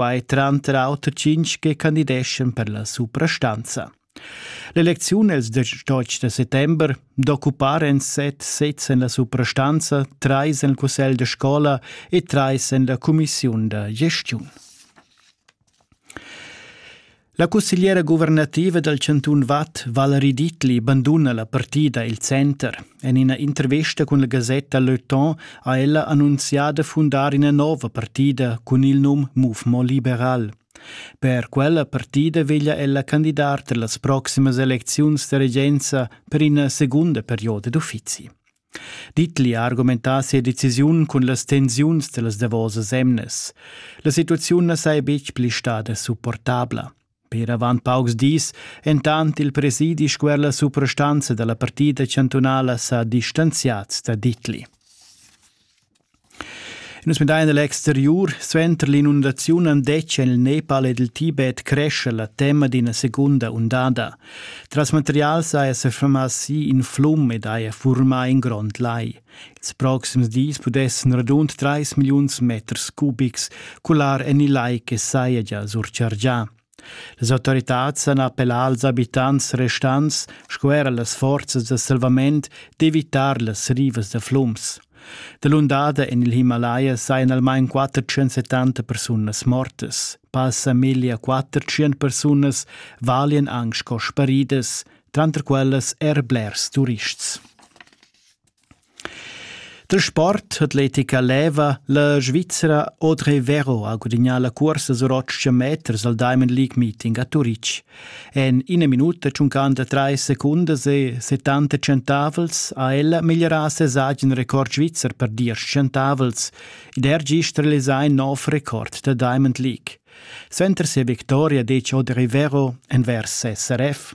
quai tranter auter tschintg che candideschan per la suprastanza. L'elecziun els 18 de settember d'occupar en set sez en la suprastanza, trais en il cussegl de scola e trais en la commissiun da gestiun. La cussegliera guvernativa dal chantun Vad, Valerie Dietli, banduna la partida Il Center. En ina intervesta cun la gasetta Le Temps ha ella annunzià da fundar ina nova partida cun il num Mouvement Liberal. Per quella partida veglia ella candidar per las proximas elecziuns da regenza per ina segunda perioda d'uffizi. Ditli ha argumentà sia decisiun cun las tensiuns dellas davosas emnas. La situaziun na saja betg pli stada supportabla. Per avant paucs dis, entant il presidi squer la suprastanza da la partida chantunala sa distanziads da Ditli. Nus midain egl exteriur. Suenter l'inundaziun han detg en il Nepal ed il Tibet cresce la tema d'ina segunda undada. Tras materials haja sa fermà si in flum ed haja furmà in grond lai. Ils proxims dis pudessan radund 3 milliuns meters cubics cular en il lai che saja gia surchargià. Las autoritads han appellà als abitants restants sco era las forzas da salvament d'evitar las rivas da flums. Dalundada en il Himalaya sajan almain 470 persunas mortas. Passa meglio 400 persunas valian anche sco sparidas, tranter quellas er blers turists. Da sport hat l'etica leva la Svizzera Audrey Vero ha gudignà la cuorsa sur 800 meters al Diamond League Meeting a Turitg. En ina minuta tschuncanda trais secundas e 70 centavels ha ella migliorà ses agen record svizzer per diesch centavels ed er gist realisà in nov record da Diamond League. Suenter sia victoria dec Audrey Vero envers SRF.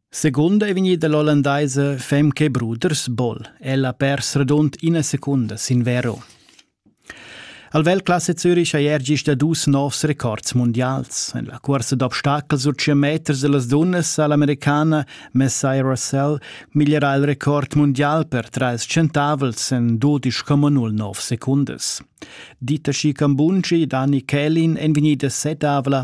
Secund ei vegnida l'ollandaisa femca e bruders Boll. Ella ha pers radund ina secunda sin vero. Al Weltklasse Zürich ha er gist da dus novs records mundials. En la cursa d'obstacol sur 100 meters dellas dunnas ha l'americana Messiah Russell migliorà il record mundial per trais centavels en 12,09 secundas. Dita Skikambunci e Dani Kelin èn vegnidas setavla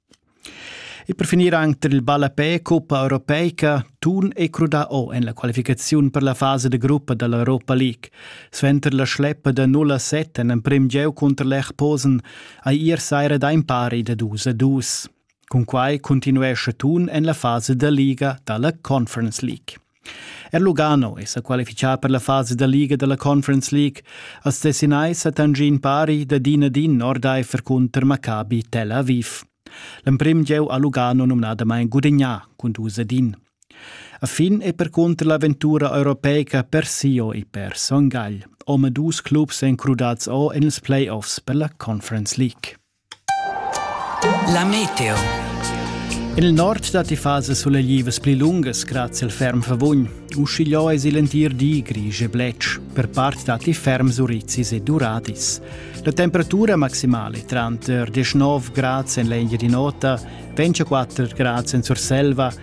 E per finir anc tar il ballapè cuppa europeica Thun è crudà o en la qualificaziun per la fasa da gruppa da l'Europa League. Suenter la schleppa da 0 a 7 en emprim gieu cunter Lech Posen hai ier saira da impari da 2 a 2. Cun quai cuntinuescha Thun en la fasa da liga da la Conference League. Er Lugano è sa qualifichà per la fasa da liga da la Conference League. Als Tessinais ha Tangin Pari da din ad in ordaifer cunter Maccabi Tel Aviv. L'emprim gieu ha Lugano numnadamain gudagnà cun dus ad in. A fin è percunter l'avventura europeica Persio e per Son Gagl. Omadus clubs èn crudats o en ils playoffs per la Conference League. La meteo. In il nord datti fasas suleglivas pli lungas grazie al ferm favugn. Uschigliò es il entir di grisch e bletsch. Per part datti ferms urizis e duradis. La temperatura maximale tranter 19 gradi en l'Engia di Nota, 24 gradi in Surselva